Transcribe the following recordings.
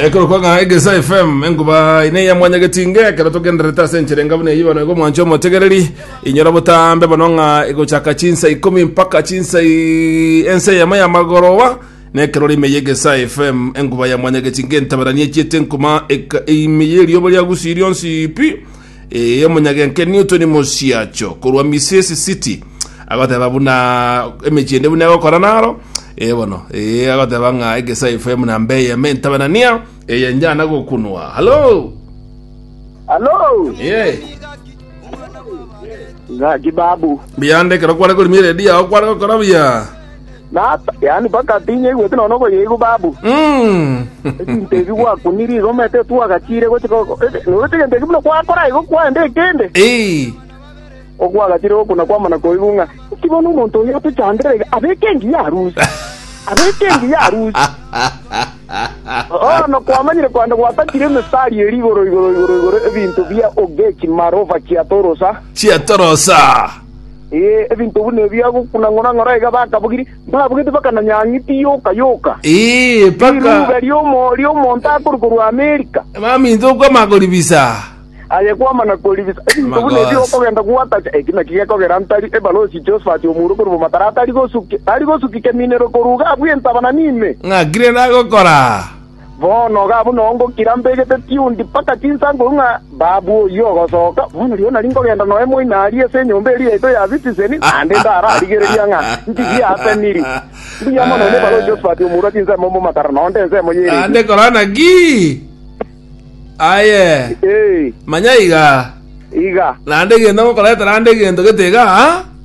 ekero kwang'aa egesa fm enkuba ine ya mwanya getinge ekero togenderete ase enchere engabu neyio bono igo mwancho omotegereri inyora botambe bono ng'a egochaka chinsa ikomi mpaka chinsa i- ense yamo ya magoroba na ekero rime ya egesa fm enkuba ya mwanya getinge entabarani echiete enkuma eka- ime ya erioba riagusi rionsi pi Ee, omonyagenkeni otwe ni mosiacho korwa Misesi City, agoteba buna emechie ende buna egokora naro, ee bono, ee, agoteba ng'a egesae FM na mbe eyemo entabanania, eye njana gokunwa. Halo! Hello. Ee, Ngaji babu. biyande ekero kware korimi eredio yao kware gokora buya. yaani mpaka tinyaigweti nonya okoyeigwa, babu. Ebinto ebi gwakunire igo omanyete twagachiire gochika noruete egento ekio buna gwakora igo kwaenda ekende. Ko gwagachiire gokuna kwamana koigwa ng'a inki bono omonto oyo otochandera iga abeke engiya arusi, abeke engiya arusi. Bono kwamanyire kwaenda gwatakire emestari eria igoro igoro igoro igoro ebinto bia ogechi marova chiatorosa. Ebinto buna ebi agokuna ng'ora-ng'ora iga bakabogiri, mbabogete bakananyang'iti yoka yoka, Ee, mpaka riruube ri'omo ri'omonto akorwa korwa Amerika, baminto okwama koribisa. aye kwama na koribisa. Ebinto buna ebi Amagoso. okogenda gwatacha, eki naki gekogera ntari ebalosi Josephat omoura okorwa Bomataro atari gosuki, tari gosuki keminero korwa iga abwo entabana nime. Ng'akire nagokora. Bono iga buna ongokira mbegete tiundi mpaka chinsankuru ng'a babu oyio ogosoka. Bono rirorio nari nkogenda noe moino aria ase enyomba eria yaito ya Sitiseni, naende ndararigereria ng'a ndirigie ase Nili. Mbuya mono nebare o Josphat omorua chinsemo omomakara, na onde ensemo y'eredii. Ee, iga.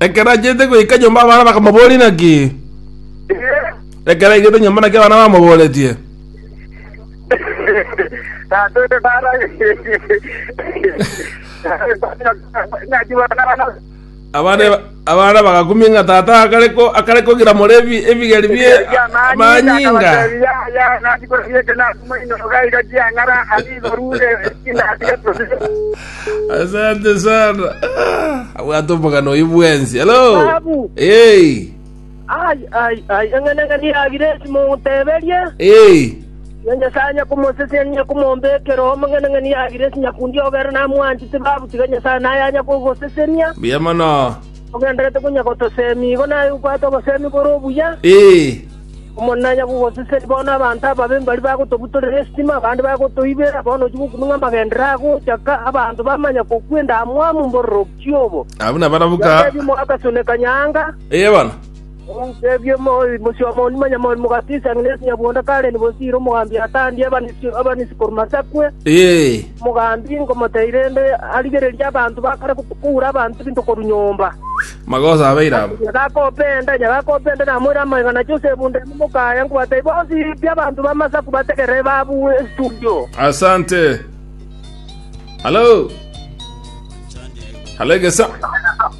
Ekero achiete goika nyomba abana bakamoboria naki. Ekero aigete nyomba naki abana bamoboretie. Abana abana bagakumia ng'a tata akare ko akare kogira morebi ebigeri bie amanyinga. Asante sana. Abwate omogano oyo bwensi. Hello. Babu. Hey. Ai, ai, ai, eng'enang'ani yagire esimo omoteberie, na Nyasae onye komosesenia na onye komombekera oo, amang'enang'ani yagire esinyakundi obere namwanchete babu, tiga Nyasae naye anye kogosesenia. Mbuya mono. Ogenderete konya gotoseemia igo naye obwate oboseemi bore obuya. Omonene anye kogosesenia. Bono abanto ababe mbari bagotobutorera esitima, abande bagotoibera. Bono ochia gokumia ng'a amagendero agocha ka, abanto bamanya kokwenda amwamu mbororokio obo. Abwo nabarabwo ka. Nyasae ri'omoakasone kanyaanga. ey'ebana. Teebia omosia-omoonyu, manya moorimo gatiisa ng'a Yeso nyabwonda kare ni bosire, omogambi atandie abanisi korwa masakwe. Omogambi nkomotebi rende arigererie abanto ba kare koura abanto ebinto korwa nyomba. Magoso abeire aba. Nyagakope enda, nyagakope enda, namoire amaega na Josefu enda ime mokaya, nkobatebi bonsi pi abanto b'amasaku bategere babue estudio. Asante. Halo. Halo egesa.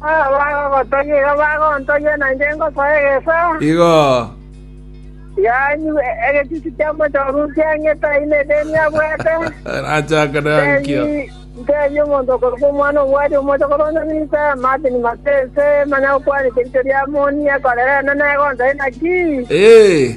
Abagogotogia iga bagontogia, na inche ngosoa egeesa. Igo Yaanywa egechuchu ki'omochenu kiang'ete aino edeni abwate. rachaka nankio. Ntebia omonto okorokwa omwana obwari omochokoro onde Minsa, Martin Matese, manya gokwanete ericho ria Amoni, ekorere Enene egoncha inaki? Ee.